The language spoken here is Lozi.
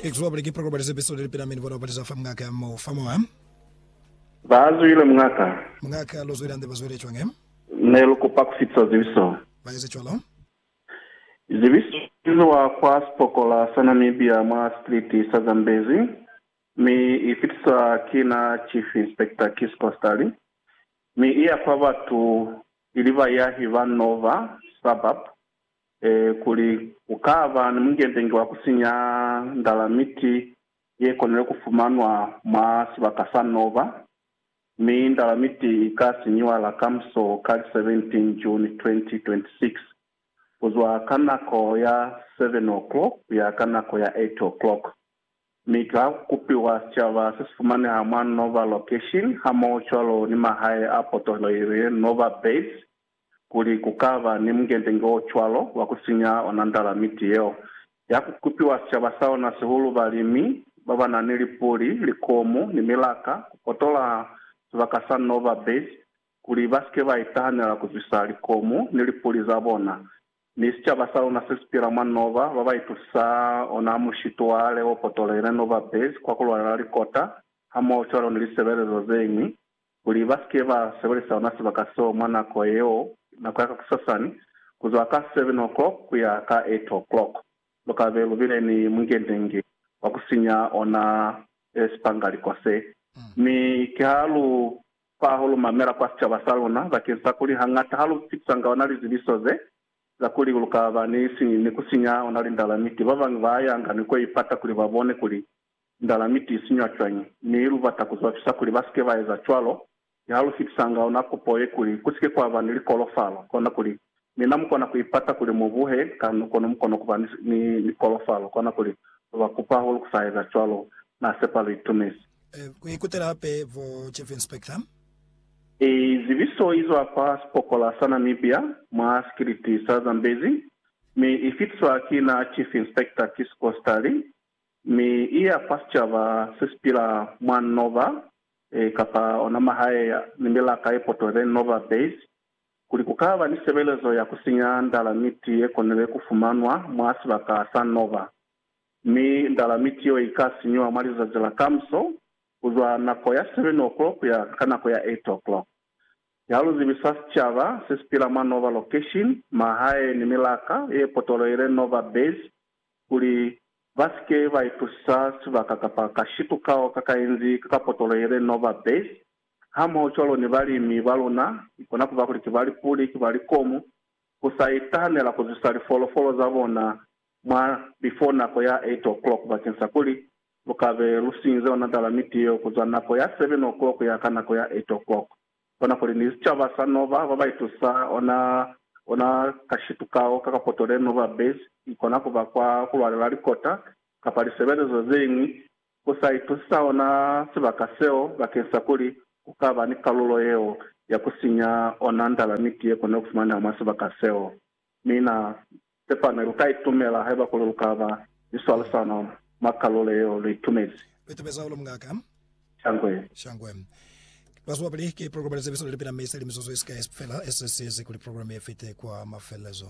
Pigs wa buliki Program is episode lipila mini bona upatisa fa mngaka ya mo fa moya. Ba zwile mngaka. Mngaka lu zwile hande ba zwile cwang he? Ne lu kupa ku fitisa zibiso. Ba ezi cwalo. Zibiso i ziwa kwa sipokola sa Namibia mwa sitiliti sa Zambezi mi i fitiswa ki na Chief Inspector Keith Costali mi i ya kwa batu ili bayahi ba Nova Suburb Ee, kuli ku ka ba ni mungendengi wa ku sinya ndalamiti ye konile ku fumanwa mwa sibaka sa Nova, mi ndalamiti i ka sinyiwa la kamuso ka li 17 June 2026, ku zwa ka nako ya 7 o'clock ku ya ka nako ya 8 o'clock. Mi ki ha ku kupiwa sicaba se si fumaneha mwa Nova Location hamoho cwalo ni mahae a potohelo ye Nova Base, kuli ku ka ba ni mukendenge o cwalo wa ku sinya ona ndala miti yeo ya ku kupiwa sicaba sa ona sihulu balimi ba ba na ni lipuli, likomu, ni milaka ku potola sibaka sa Nova Base kuli ba si ke ba itahanela ku zwisa likomu ni lipuli za bona ni sicaba sa luna se si pila mwa Nova ba ba itusisa ona mushituale o potolehile Nova Base kwa ku lwalela likota hamoho cwalo ni lisebelezo ze ñwi kuli ba si ke ba sebelisa ona sibaka seo mwa nako yeo, nako ya ka kusasani, ku zwa ka seven o'clock ku ya ka eight o'clock, lu ka be lu bile ni mungendenge wa ku sinya ona e sipangaliko se. Mi ki ha lu fa hahulu mamela kwa sicaba sa luna, bakeng sa kuli hangata ha lu fitisanga ona lizibiso ze, za kuli lu ka ba ni ku sinya ona lindala, niti ba bañwi ba yanga ni ku yo ipata kuli ba bone kuli Ndala mi tisinywa cwañi, mi lubata kuzwafisa kuli basike baeza cwalo? Mi halufitisanga ona kupo ye kuli kusike kwaba ni likolofalo, kona kuli, mina mukona kuipata kuli mubuhe ka nuko no mukona kuba ni, ni, ni kolofalo, kona kuli, luba kupa hahulu kusaeza cwalo. Na sepa luitumisi. Ku ikutela hape vo Chief Inspector. E, zibiso izwa kwa sipokola sa Namibia, mwa sikiliti sa Zambezi, mi ifitiswa ki na Chief Inspector Kisco Starlee, Mi i ya kwa sicaba se si pila mwa noba, ee, kapa ona mahae a ni milaka ye poto be noba base, kuli ku ka ba ni sebelezo ya ku sinya ndalamiti ye konile ku fumanwa mwa sibaka sa noba. Mi ndalamiti yeo i ka sinyiwa mwa lizazi la kamuso, ku zwa nako ya seven o'clock ku ya ka nako ya eight o'clock. Ha lu zibisa sicaba se si pila mwa noba location, mahae ni milaka ye poto ye li noba base, kuli ba si ke ba itusa sibaka kapa kashitu kao ka ka inzi ka kapotolo yele Nova Base, hamoho cwalo ni balimi ba luna, ikona kuba kuli ki ba lipuli, ki ba likomu, ku sa itahanela ku zwisa lifolofolo za bona mwa before nako ya 8 o'clock bakeng sa kuli lu ka be lu sinyize ona dalamiti yeo kuzwa nako ya 7 o'clock ya ka nako ya 8 o'clock. Kona kuli ni sicaba sa Noba ba ba itusa ona, ona kashitu kao ka kapoto le Noba Base i kona ku ba kwa ku lwalela likota kapa lisebelezo ze ñwi, ku sa itusisa ona sibaka seo bakeng sa kuli ku ka ba ni kalulo yeo ya ku sinya ona ndala miti ye kona ku fumaneha mwa sibaka seo. Mi Na sepame lu ka itumela haiba kuli lu ka ba ni swalisano mwa kalule yeo lu itumezi. Lu itumeza hahulu mwa ka. Shangwe. Shangwe. Lwa ziba kuli ki programe ya Zebiso le Lipina mi se li mizuzu ye sikai fela. Sesizi kuli programe ye fite kwa mafelelezo.